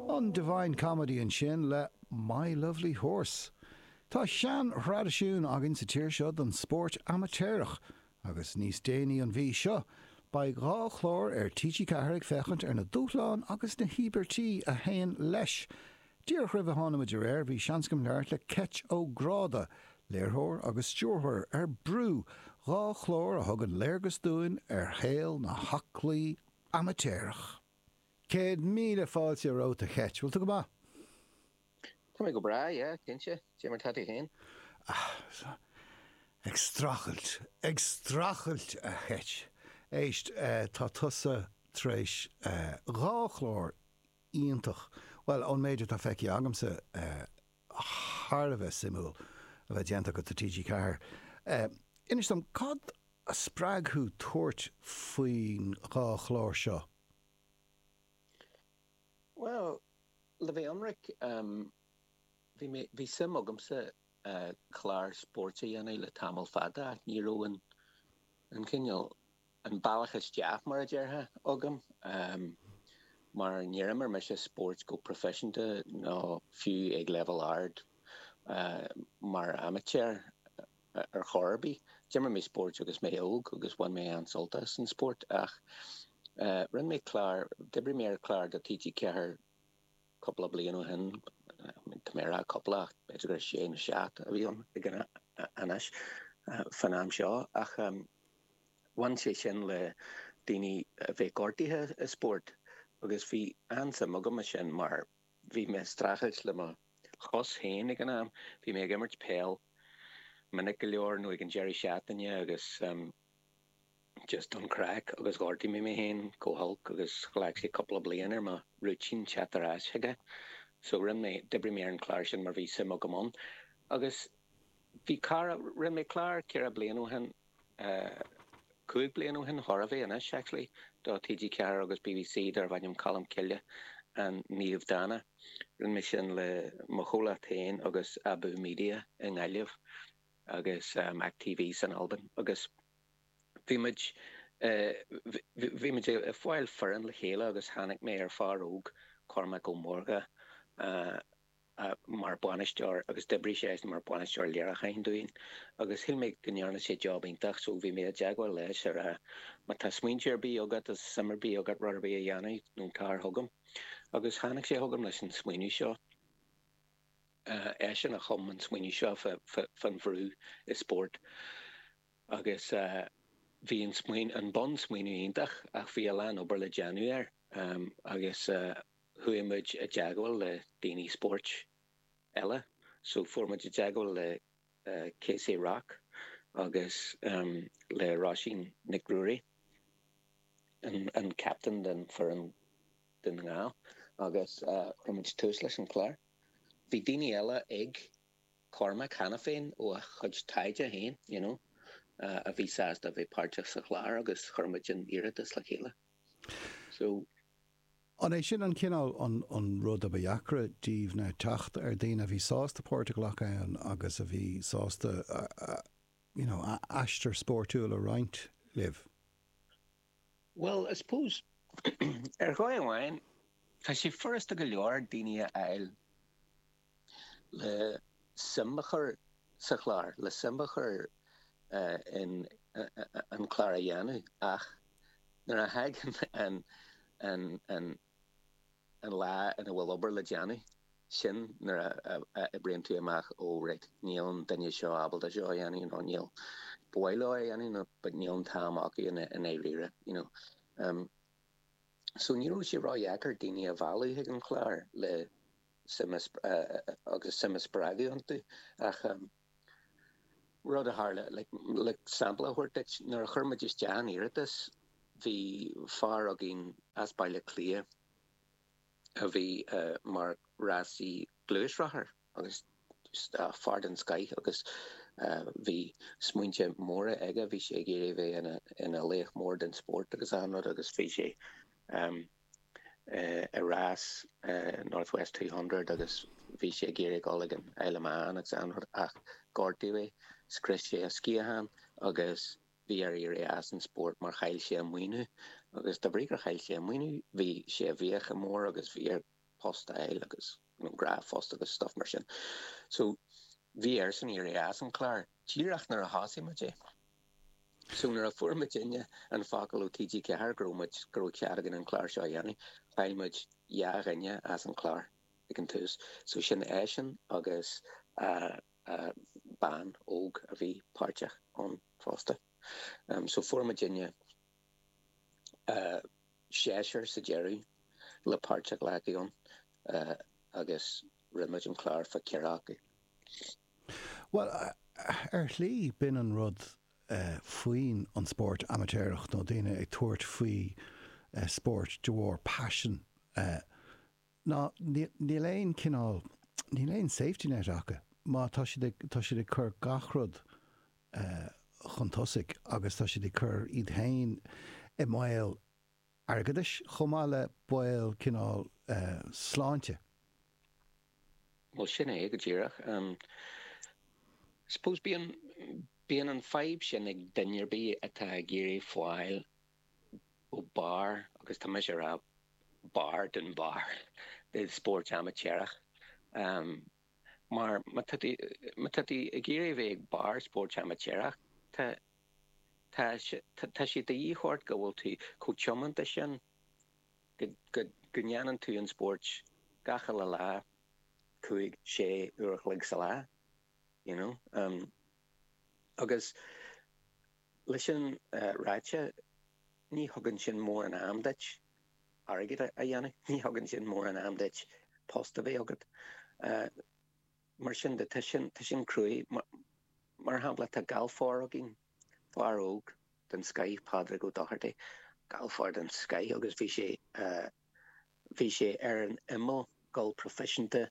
An Divine Comedy ansin le My Lovely Horse. Tá sean-thraidisiún againn sa tír seo don spórt amaitéarach agus níos déanaí an mhí seo beidh dhá chlár ar TG4 ag féachaint ar na dúshláin agus na híobairtí a théann leis. Díreach roimh a thánamar ar aer bhí seans agam labhairt le Keith O'Grady, léiritheoir agus stiúrthóir ar Brú, dhá chlár a thugann léargas dúinn ar shaol na n-aclaí amaitéarach. Céad míle fáilte romhat a Keith. Bhfuil tú go maith? Tá mé go breá, yeah, cinnte. Cé mar tá tú féin? Ag strachailt, ag strachailt a Keith. Éist, tá tusa tar éis dhá chlár iontach, bhuel, ón méid atá feicthe agamsa, thar a bheith suimiúil a bheith déanta agat do TG Ceathair. Inis dom, cad a spreag thú tabhairt faoin dhá chlár seo? Bhuel, le bheith ionraic, bhí mé, bhí suim agamsa clár spóirt a dhéanamh le tamall fada ach ní raibh an, an cineál, An bealach isteach mar a déarfá agam, mar níor imir mise spóirt go proifisiúnta nó fiú ag leibhéal ard mar amaitéar ar chor ar bith. D'imir mé spóirt agus mé óg agus bhain mé an-sult as an spórt ach rinne mé clár, d'oibrigh mé ar chlár do TG4 cúpla bliain ó shin, tá mé ag rá cúpla ach b'fhéidir gur sé nó seacht a bhí ann anois, fán am seo ach. Bhain sé sin le daoine a bheith gortaithe i spórt agus bhí an-suim agam i sin mar bhí mé ag streachailt le mo chos féin ag an am. Bhí mé ag imirt peil minic go leor nó ag an deireadh seachtaine agus just don craic agus ghortaigh mé mé féin go holc agus ghlac sé cúpla bliain ar mo rúitín teacht ar ais chuige. So rinne mé, d'oibrigh mé ar an chlár sin mar bhí suim agam ann. Agus bhí cara, rinne mé clár ceithre bliana ó shin. Cúig bliain ó shin thar a bhí anois, actually, do TG4 agus BBC darbh ainm Colm Cille An Naomh Dána. Rinne mé sin le mo chomhlacht féin agus Abú Media i nGaillimh agus Mac TV san Albain agus bhí muid bhí muid ag fáil foireann le chéile agus tháinig mé ar fhear óg, Cormac Ó Mórdha, mar bhainisteoir agus d'oibrigh sé mar bhainisteoir léiriúcháin dúinn agus shíl mé go ndearna sé job iontach so bhí mé i dteagmháil leis ag rá má tá smaointe ar bith agat nó suim ar bith agat rud ar bith a dhéanamh déan cinnte tar chugam agus tháinig sé chugam leis an smaoineamh seo. Eisean a chum an smaoineamh seo faoin bhrú i spórt agus bhí an smaoineamh, an bunsmaoineamh iontach ach bhí a lán obair le déanamh air agus chuaigh muid i dteagmháil le daoine spóirt eile so fuair muid i dteagmháil le Casey Rock agus le Róisín Nic Ruairí, an captain den foireann Dún na nGall agus chuir muid tús leis an chlár. Bhí daoine eile ag Cormac cheana féin ó a chuid taighde féin, you know, a bhí sásta a bheith páirteach sa chlár agus chuir muid an iarratas le chéile. An é sin an cineál an rud a ba dheacra díbh ná teacht ar daoine a bhí sásta páirt a ghlacadh ann agus a bhí sásta you know a n-aistear spóirtiúil a roinnt libh? Bhuel I suppose ar dhóigh amháin tá sé furasta go leor daoine a fháil le suim a chur sa chlár, le suim a chur in an clár a dhéanamh ach nuair a thagann an an lá ina bhfuil obair le déanamh, sin nuair a oibríonn tú amach all right, níl an duine seo ábalta seo a dhéanamh nó ba mhaith leo é a dhéanamh but níl an t-am acu i ndáiríre, you know. So ní raibh sé ró-dheacair daoine a mhealladh chuig an chlár le suim agus suim a spreagadh iontu ach rud a tharla le sampla a thabhairt duit nuair a chuir muid isteach an iarratas bhí fear againn as Baile Átha Cliath a bhí mar rásaí gluaisrothair. agus fear den scoith agus bhí smaointe móra aige. Bhí sé ag iarraidh a bheith ina laoch mór den spórt agus achan rud agus bhí sé ag rás North West Two Hundred agus bhí sé ag iarraidh dul chuig an Isle of Man agus achan rud ach gortaíodh é, scrios sé a sciathán agus bhí air éirí as an spórt mar chaill sé a maoiniú agus de bhrí gur chaill sé a maoiniú bhí sé i bhfiacha mór agus bhí air post a fháil agus. nó dara post agus stuff mar sin. So bhí airsean éirí as an chlár díreach nuair a thosaigh muid é. So nuair a fuair muidinne an focal ó TG4 go raibh muid, go raibh cead againn an clár seo a dhéanamh, chaill muid dhá dhuine as an chlár ag an tús. So sin eisean agus bean óg a bhí páirteach ann fosta. So fuair muidinne. seisear sa deireadh le páirt a ghlacadh ann agus rinne muid an clár fá cheathrar acu. Bhuel, ar shlí, b'in an rud faoin an spórt amaitéarach nó daoine ag tabhairt faoi spórt de bharr paisean Ná níl aon cineál, níl aon safety net acu. Má tá, tá siad ag cur gach rud chun tosaigh agus tá siad ag cur iad féin i mbaol airgeadais chomh maith le baol cineál sláinte. Bhuel sin é go díreach. Suppose bíonn, bíonn an fhadhb sin ag duine ar bith atá ag iarraidh fáil go barr, agus tá mise ag rá barr den barr i spóirt amaitéarach. Mar má tá tú ag iarraidh a bheith ag barr spóirt amaitéarach, tá sé de dhíth ort go bhfuil tú chomh tiomanta sin go ndéanann tú an spóirt gach uile lá, cúig, sé uair a chloig sa lá, you know. Agus. Le sin ráite, ní thugann sin mórán am duit airgead a dhéanamh, ní thugann sin mórán am duit post a bheith agat. Mar sin de, tá sin, tá sin cruaidh. Mar shampla, tá galfóir againn, fear óg den scoith, Pádraig Ó Dochartaigh, galfóir den scoith agus bhí sé eh, Bhí sé ar an imeall gabháil proifisiúnta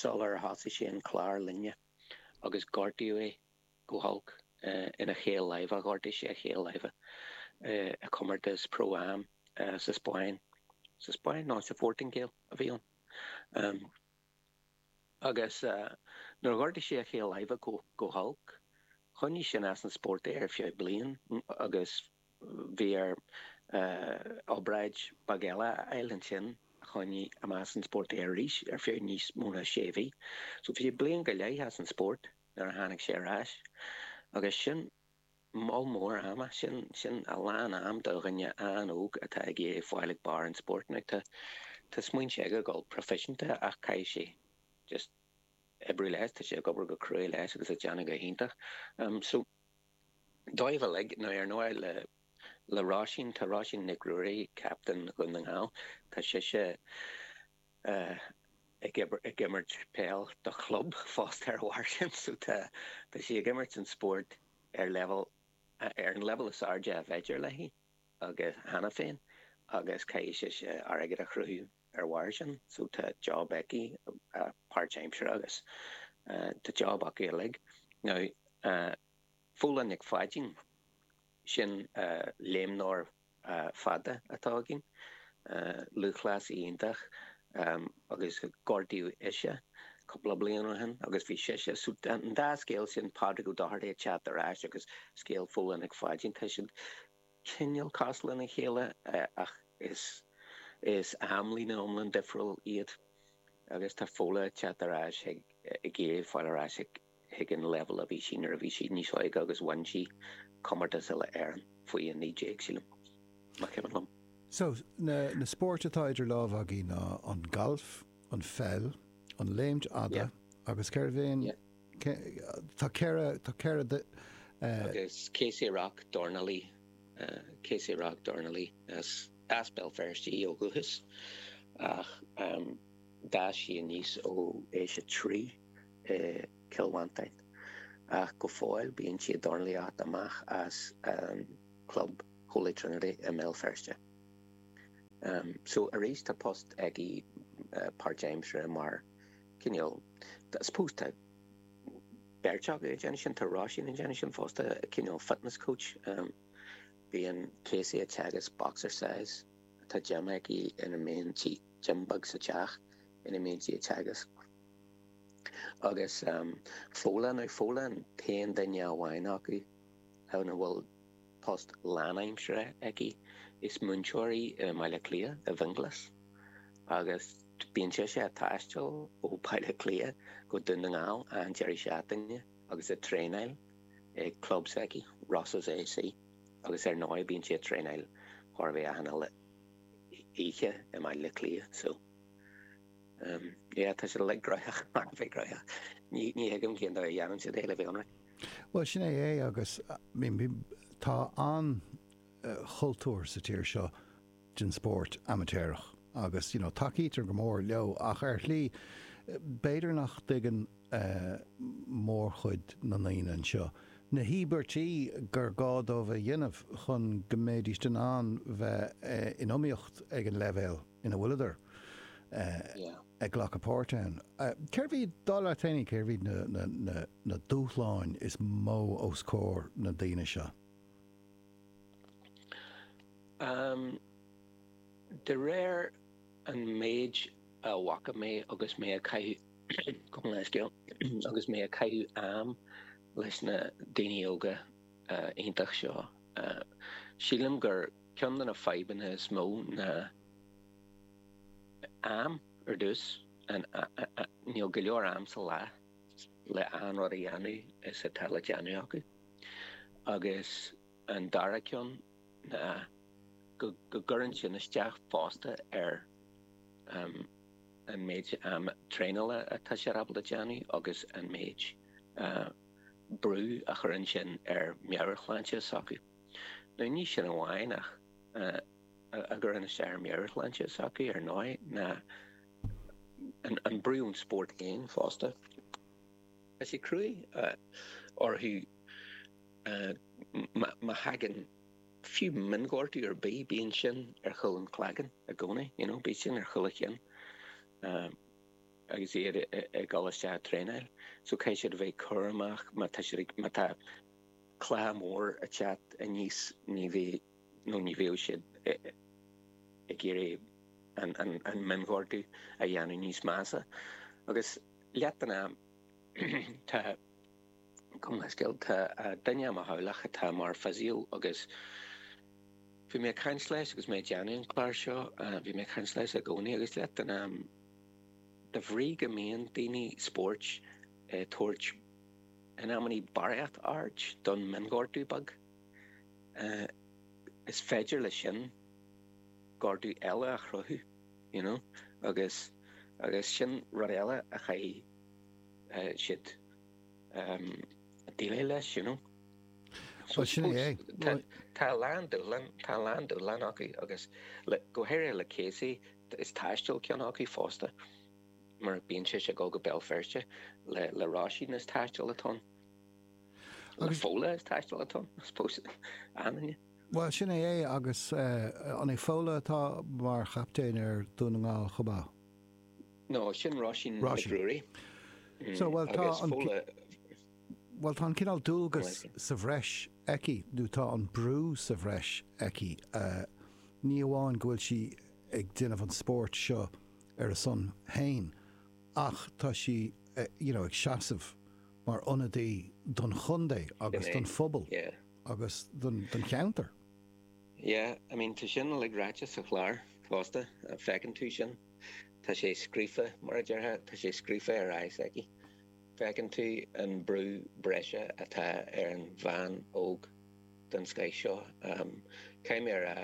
sular thosaigh sé an clár linne agus gortaíodh é go holc ina chaol láimhe. Ghortaigh sé a chaol láimhe i gcomórtas Pro Am sa Spáinn, sa Spáinn? Nó sa Phortaingéil a bhí ann. Agus nuair a ghortaigh sé a chaol láimhe go holc, choinnigh sin as an spórt é ar feadh bliain agus bhí air obráid beag eile a fháil ansin a choinnigh amach as an spórt é arís ar feadh níos mó ná sé mhí. So bhí sé bliain go leith as an spórt nuair a tháinig sé ar ais agus sin. Moll mór ama, sin sin a lán am do dhuine an-óg atá ag iarraidh fáil ag barr an spóirt. Now tá tá smaointe aige gabháil proifisiúnta ach caithfidh sé just oibriú leis, tá sé ag obair go cruaidh leis agus ag déanamh go hiontach. Umm so dóibh uilig, now ar ndóigh le le Róisín, tá Róisín Nic Ruairí, captain Dhún na nGall, tá sise, ag imirt peil do chlub fosta ar a bharr sin. So tá tá sí ag imirt an spórt ar leibhéal ar an leibhéal is airde ab fhéidir léi agus cheana féin agus caithfidh sise airgead a chruthú ar bharr sin. So tá job aici páirt aimsire agus tá job acu uilig. Now Féilim Mac Pháidín. Sin léimneoir fada atá againn, lúthchleasaí iontach agus gortaíodh ise cúpla bliain ó shin agus bhí sise, so an dá scéal sin, Pádraig Ó Dochartaigh ag teacht ar ais agus scéal Fhódhla Nic Pháidín, tá siad cineál cosúil lena chéile ach is amlíne iomlán difriúil iad agus tá Fódhla ag teacht ar ais ag iarraidh fáil ar ais ag. chuig an leibhéal a bhí sí nuair a bhí sí níos óige agus bhain sí comórtas Uile-Éireann faoi 19, sílim, más cuimhin liom. So, na spóirt atá idir lámha agaibh ná an galf, an pheil, an léimt fhada agus cérbh é an, tá ceithre, tá ceithre. Agus Kaci Rock, dornálaí, Kaci Rock, dornálaí, as Béal Feirste í ó dhúchas ach. D'fhás sí aníos ó aois a trí i gCill Mhantáin ach go fóill bíonn sí ag dornálaíocht amach as an club Holy Trinity i mBéal Feirste. So arís tá post aici páirtaimseartha mar cineál, I suppose tá beirt acu ag déanamh sin, tá Róisín ag déanamh sin fosta, cineál fitness coach. Bíonn Kaci ag teagasc boxercise, tá gym aici ina mbíonn sí. Gym beag sa teach ina mbíonn sí ag teagasc agus Fódhla an, Fódhla an t-aon duine amháin acu ann a bhfuil post lánaimseartha aici, is múinteoir í i mBaile Cliath, i bhFionnghlas, agus bíonn sise ag taisteal ó Bhaile Cliath go Dún na nGall achan deireadh seachtaine agus ag traenáil ag club s'aici, Rosses AC, agus ar ndóigh bíonn sí ag traenáil chóir a bheith achan uile. oíche i mBaile Cliath so umm yeah tá sé like gnóthach, thar a bheith gnóthach. Ní ní thuigim cén dóigh a dhéanann siad é le bheith ionraic. Bhuel sin é é agus tá an chultúr sa tír seo den spórt amaitéarach agus you know tacaítear go mór leo ach ar shlí b'fhéidir nach dtuigeann mórchuid na ndaoine anseo, na híobairtí gur gá dóibh a dhéanamh chun go mbeidís in ann bheith in iomaíocht ag an leibhéal ina bhfuileadar ag glacadh páirt ann. Cérbh iad, dar leat féin, cérbh iad na dúshláin is mó os comhair na ndaoine seo? De réir an méid a bhfaca mé agus mé ag caitheamh am leis na daoine óga iontach seo, sílim gur ceann de na fadhbanna is mó ná am. Ar dtús, níl go leor am sa lá le achan rud a dhéanamh is atá le déanamh acu agus An dara ceann ná go gcuireann sin isteach fosta ar an méid am traenála atá siad ábalta déanamh agus an méid brú a chuireann sin ar meabhairshláinte s'acu. No, ní sin amháin ach a gcuireann isteach ar meabhairshláinte s'acu ar ndóigh ná an brú ón spórt féin fosta. Tá sé cruaigh orthu. Má thagann fiú mionghortú ar bith bíonn sin ar chúl an chloiginn i gcónaí, you know, bíonn sin ar chúl a gcinn agus iad ag dul isteach a thraenáil. So caithfidh siad a bheith ag cur amach má tá siad ag, má tá cluiche mór ag teacht aníos ní bheidh, nó ní bheadh siad ag iarraidh an mionghortú a dhéanamh níos measa. Agus leath den am tá. Cibé scéal, tá duine i mo theaghlach atá mar physio agus bhí mé ag caint leis agus mé ag déanamh an clár seo, bhí mé ag caint leis i gcónaí agus leath den am, de bhrí go mbíonn daoine spóirt ag tabhairt, in amannaí, barraíocht aird don mionghortú beag, is féidir le sin gortú eile a chruthú, you know, agus agus sin rud eile a chaithfidh siad. a dhéileáil leis, you know. Bhuel, sin é. Tá a lán dúshlán, tá a lán dúshlán acu agus go háirithe le Casey, is taisteal ceann acu fosta mar bíonn sé ag dul go Béal Feirste. Le Róisín is taisteal atá ann. Le Fódhla is taisteal atá ann, I suppose, ann. Bhuel, sin é é agus an é Fódhla atá mar chaiptín ar Dhún na nGall chomh maith? No, sin Róisín Nic Ruairí. So, bhuel, tá an, bhuel, tá an cineál dualgas sa bhreis aici, nó tá an brú sa bhreis aici, ní amháin go bhfuil sí ag déanamh an spóirt seo ar a son féin ach tá sí, you know, ag seasamh mar ionadaí don chontae agus don phobal agus don cheantar. Yeah, I mean, tá sin uilig ráite sa chlár fosta, feicfidh tú sin. Tá sé scríofa, mar a déarfá, tá sé scríofa ar aghaidh s'aici. Feiceann tú an brú breise atá ar an bhean óg den scoth seo. Caithfidh mé a rá,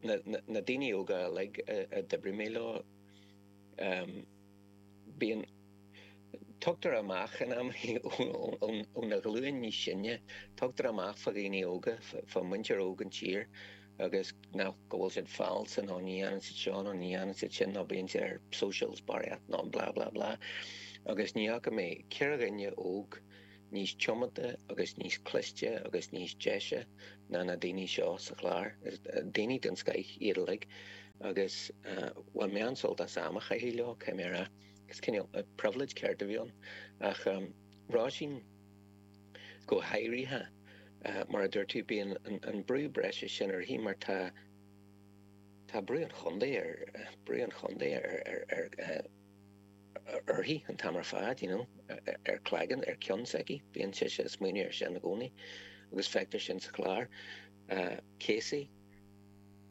na daoine óga uilig a d'oibrigh mé leo, bíonn, Tugtar amach in amannaí ó na ghlúin níos sine, tugtar amach fá dhaoine óga, fá muintir óg an tír agus nach, go bhfuil siad fallsa nó ní dhéanann siad seo nó ní dhéanann siad sin nó bíonn siad ar socials barraíocht nó blah blah blah. Agus ní fhaca mé ceithre dhuine óg níos tiomanta agus níos cliste agus níos deise ná na daoine seo sa chlár. Daoine den scoith iad uilig agus bhain mé an-sult as am a chaitheamh leo, caithfidh mé a rá. Cineál privilege ceart a bhí ann ach Róisín go háirithe, mar a dúirt tú, bíonn an brú breise sin uirthi mar tá tá brú an chontae ar brú an chontae ar uirthi an t-am ar fad, you know, ar cloigeann, ar cionn s'aici, bíonn sise ag smaoineamh ar sin i gcónaí agus feictear sin sa chlár. Casey,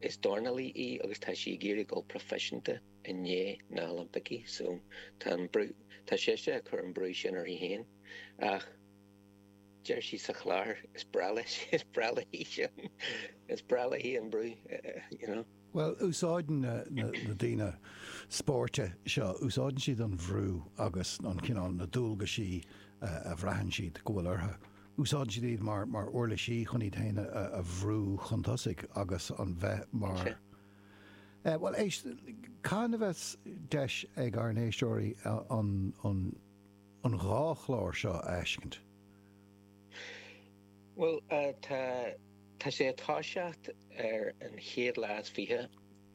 is dornálaí í agus tá sí ag iarraidh a dhul proifiseanta. i ndiaidh na Oilimpicí so tá an brú, tá sise ag cur an brú sin uirthi féin ach deir sí sa chlár is breá leis, is breá léi sin, is breá léi an brú you know. Bhuel úsáideann na daoine spóirt seo, úsáideann siad an bhrú agus an cineál na dualgaisí a bhraitheann siad go bhfuil orthu, úsáideann siad iad mar mar uirlisí chun iad féin a bhrú chun tosaigh agus an bheith mar, Bhuel, éist, cathain a bheas deis ag ár n-éisteoirí an dhá chlár seo a fheiscint? Bhuel, tá tá sé ag toiseacht ar an chéad lá is fiche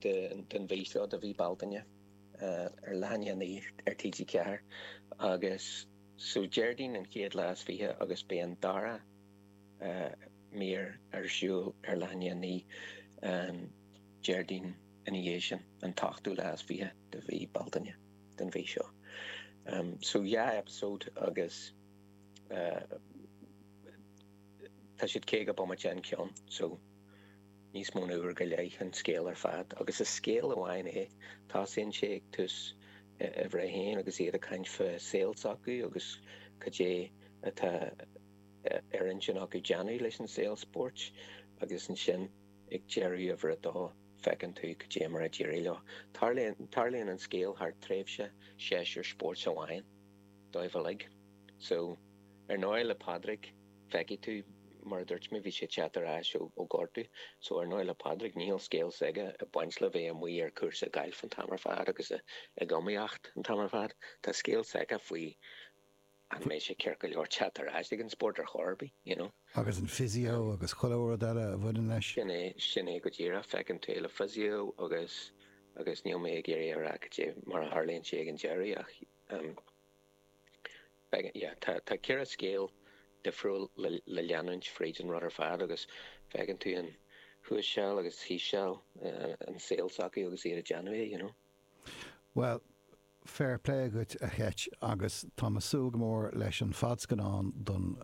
den mhí seo de mhí Bealtaine ar leath i ndiaidh a naoi ar TG4 agus so Déardaoin an chéad lá is fiche agus beidh an dara mír ar siúl ar leath i ndiaidh a naoi an Déardaoin ina dhiaidh sin, an t-ochtú lá is fiche de mhí Bealtaine den mhí seo. So dhá eipeasóid agus tá siad caoga bomaite an ceann, so níos mó na uair go leith an scéal ar fad agus is scéal amháin é. Tosaíonn sé ag tús uimhir a haon agus iad ag caint faoi saol s'acu agus cad é atá ar intinn acu déanamh leis an saol spóirt agus ansin ag deireadh uimhir a dó feiceann tú cad é mar a d'éirigh leo. Tarlaíonn an scéal thar tréimhse séasúr spóirt amháin dóibh uilig. So, ar ndóigh le Pádraig feicfidh tú, mar a dúirt mé bhí sé ag teacht ar ais ó gortú, so ar ndóigh le Pádraig níl scéal s'aige ag baint le bheith amuigh ar cúrsa gailf an t-am ar fad agus ag iomaíocht an t-am ar fad. Tá scéal s'aige faoi. Ach beidh sé ceart go leor teacht ar ais ag an spórt ar chor ar bith, you know. Agus an physio agus chuile rud eile a bhaineann leis? Sin é, sin é go díreach. Feiceann tú é le physio agus, agus níl mé ag iarraidh a rá cad é mar a tharlaíonn sé ag an deireadh ach ehm, beidh, yeah, tá, tá ceithre scéal difriúil le, le leanúint fríd an rud ar fad agus feiceann tú an thuas seal agus thíos seal, eh, an saol s'acu agus iad ag déanamh é, you know. Bhuel, Fair plé dhuit a Cheit agus táim ag súil go mór leis an fadscannán don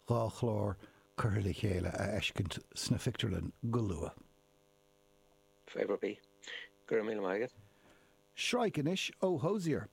dhá chlár curtha le chéile a fheiscint sna pictiúrlanna go luath. Fair play. Go raibh míle maith agat. Sraith anois ó Hozier.